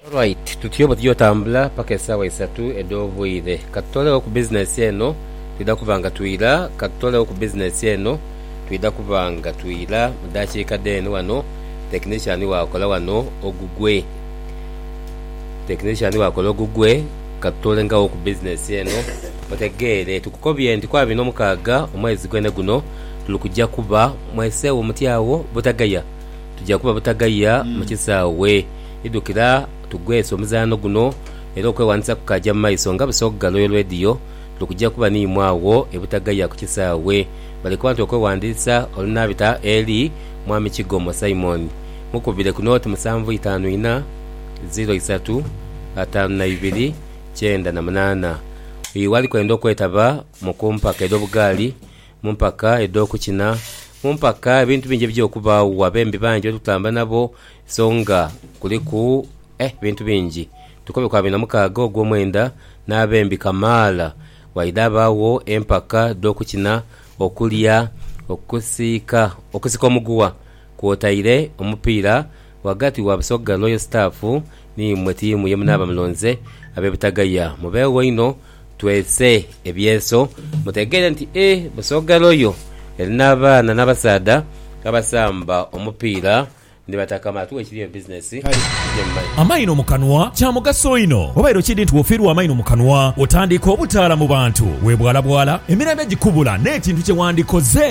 Alright tutyo bwe tugya otambula paka esaawa isatu edh'obwire. Katutolegho ku business eno twidha kuba nga twira, katutolegho ku business eno twidha kuba nga twira mu dakiika dheene wano. Technician waakola wano ogugwe, technician waakola ogugwe katutoolengagho ku business eno otegeere. Tukukobye nti ku abiri n'omukaaga omwezi gwene guno tuli kugya kuba mweseegho muti agho butagheya. Tuja kuba butagaiya mu kisaawe. Idhukira tugweese omuzaano guno era okwewandisa kukaja mu maiso nga Busoga Royal Radio tuli kuja kuba n'imwe agho e Butagaiya ku kisaawe. Bali kubantu okwewandisa olunaabita eli Mwami Kigomo Simon. Mukubire ku nooti musanvu itaanu inha, ziro isatu, ataanu na ibiri, kyenda na munaana. Oyo ghali kwenda okwetaba mu ku mpaka edh'obugaali mu mpaka edh'okukina, mu mpaka ebintu bingi ebija okubaagho, abembi bangi betutamba nabo so nga kuliku eh ebintu bingi. Tukobe ku abiri na mukaaga Ogwomwenda n'abembi kamaala waidha abaagho empaka dh'okukina, okulya, okusiika okusika omuguwa kwotaire omupiira Ghagati wa Busoga Royal Staff ni imwe tiimu ye munaaba mulonze, ab'e Butagaya mubeegho inho twese ebyeso mutegeere nti e Busoga Royal erina abaana n'abasaadha abasamba omupiira ni bataka maatu ekiri eyo bizinesi gye mumanyi. Amaino mu kanwa, Kya mugaso inho. Wabaire okidhi nti bw'ofiirwa amaino mu kanwa, otandika obutaala mu bantu, webwalabwala, emirembe gikubula n'ekintu kye wandikoze.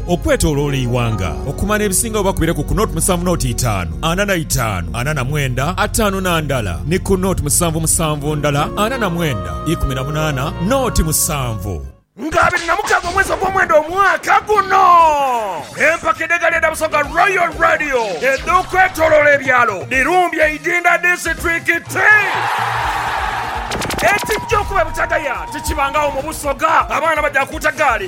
Okwetoloola eighanga okumala ebisingagho bakubire ku ku noti musanvu noti itaanu ana na itaanu ana na mwenda ataanu na ndala ni ku noti musanvu musanvu ndala ana na mwenda ikumi na munaana noti musanvu. Nga abiri na mukaaga omwezi ogw'omwenda omwaka guno, empaka edh'egaali edha Busoga Royal Radio edh'okwetoloola ebyalo dhirumbye Idinda disiturikiti. Ekijja okuba ebukyagaya tikibangagho mu Busoga, abaana baja kuuta gaali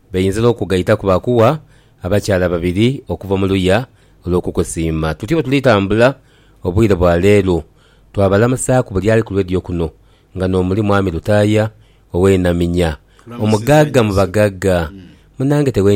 Bainza n'okugaitaku baakuwa abakyala babiri okuva mu luya olw'okukusiima. Tutyo bwe tuli tambula obwire bwa leero, twabalamusaaku buli ali ku leediyo kuno nga n'omuli Mwami Lutaaya ow'e Naminya, omugagga mu bagagga. Munange tewenyigira.